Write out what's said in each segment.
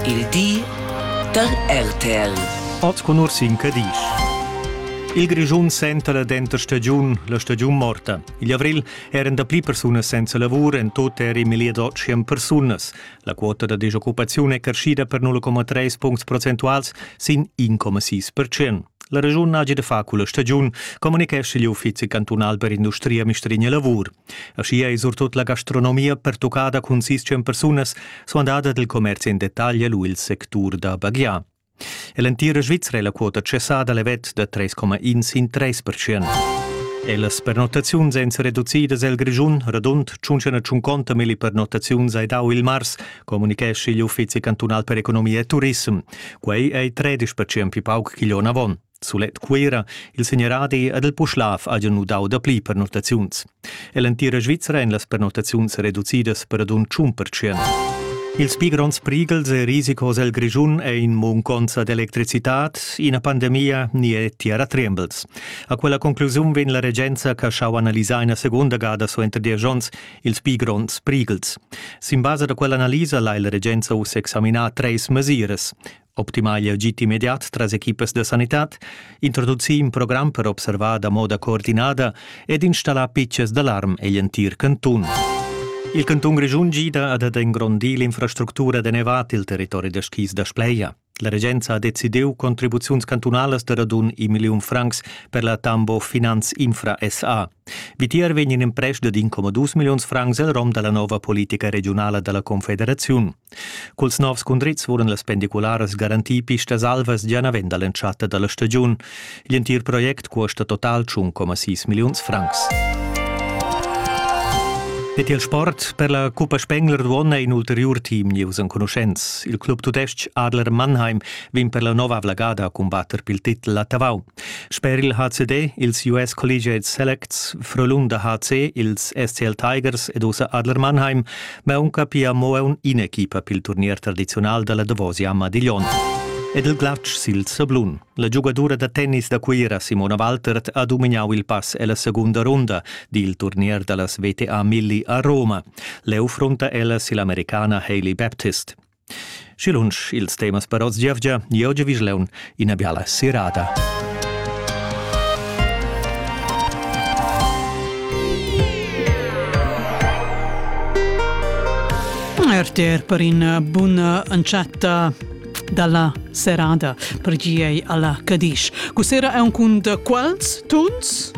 Il di da RTL. Oz con Ursin Cadisch. Il Grischun senta la denter stagiun, la stagiun morta. Igl avril eran da pli persunas senza lavur, en tot eri meglier d'otschen persunas. La quota da disoccupaziun è crescida per 0,3 puncts procentuals sin 1,6%. La regiun ha da far culla stagiun, communichesce gli uffizi cantunal per industria Mistrigne Lavur. Aschia ei surtut la gastronomia pertuccada cun sis tschien persunas suandada dil commerci en detagl lu il sectur da baghiar. Ell'entira Svizra è la quota cessada levet da 3,1 in 3 percent. E las pernottaziuns èn reducidas el Grischun, radund 150 milli pernottaziuns ai dau il mars, comunichesci igl uffizi cantunal per economia e turism. Quei ei 13% più pauc che l'on avon. Sulet Cuira, il segneradi ed il Puschlav hajan nudau dapli pernottaziuns. E l'entira Svizra en las pernottaziuns reducidas per adun tschun percent. Ils pli gronds prighels e risicos el Grischun è in munconza d'electricitad, ina pandemia ni è tiara trembles. A quella conclusiun vegn la regenza che schau analisar ina seconda gada suenter diesch onns ils pli gronds prighels. Sin basa da quell'analisa lai la regenza uss examinar treis mesiras. Optimar il agid immediat tras equipas da sanitad, introducir in program per observar da moda coordinada ed installar pitschas d'alarm egl entir cantun. Il cantun Grischun gida ad engrondir l'infrastructura da nevat il territori da skis da Spleia. La regenza ha decidiu contribuziuns cantunalas da radun in milliun francs per la Tambo Finanz Infra SA. Vitier vegn in emprest dad incomadus milliuns francs el rom dalla nova politica regionala dalla Confederaziun. Culs novs cundrits vulan las pendicularas garantir pistas alvas gia naven dall'entschatta dalla stagiun. Gl'entir project cuosta total 1,6 milliuns francs. Ed il sport per la Cuppa Spengler d'uonna in ulteriur team nieus enconuschents. Il club tudestg Adler Mannheim vegn per la nova avlagada a combatter pil titel a Tavau. Sper il HCD, ils US Collegiate Selects, Frölunda HC, ils SCL Tigers ed ussa Adler Mannheim ma aunca pia mo aunc in'equipa pil turnier tradiziunal dalla Davosia Madiglion. Ed il glatsch sil sablun. La giugadura da tennis da Cuira Simona Waltert ha dumignau il pass ella secunda runda dil turnier dallas VTA Milli a Roma. Leu frunta ella sill'americana Hailey Baptist. Schi lunsch ils temas per oz giavgia, io Giavischleun, ina biala serada. RTR per una buona encetta dalla serada per giei alla Cadisch. Cusera è un cun quals tuns?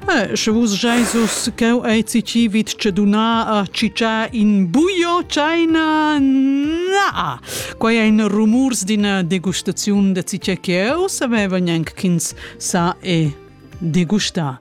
Sche vus scheis uss cheu ei ci vid tscheduna a ciccia in buio china na quei ein rumurs d'ina degustaziun da ciccia cheu savevan gnanc ch'ins sa e degustar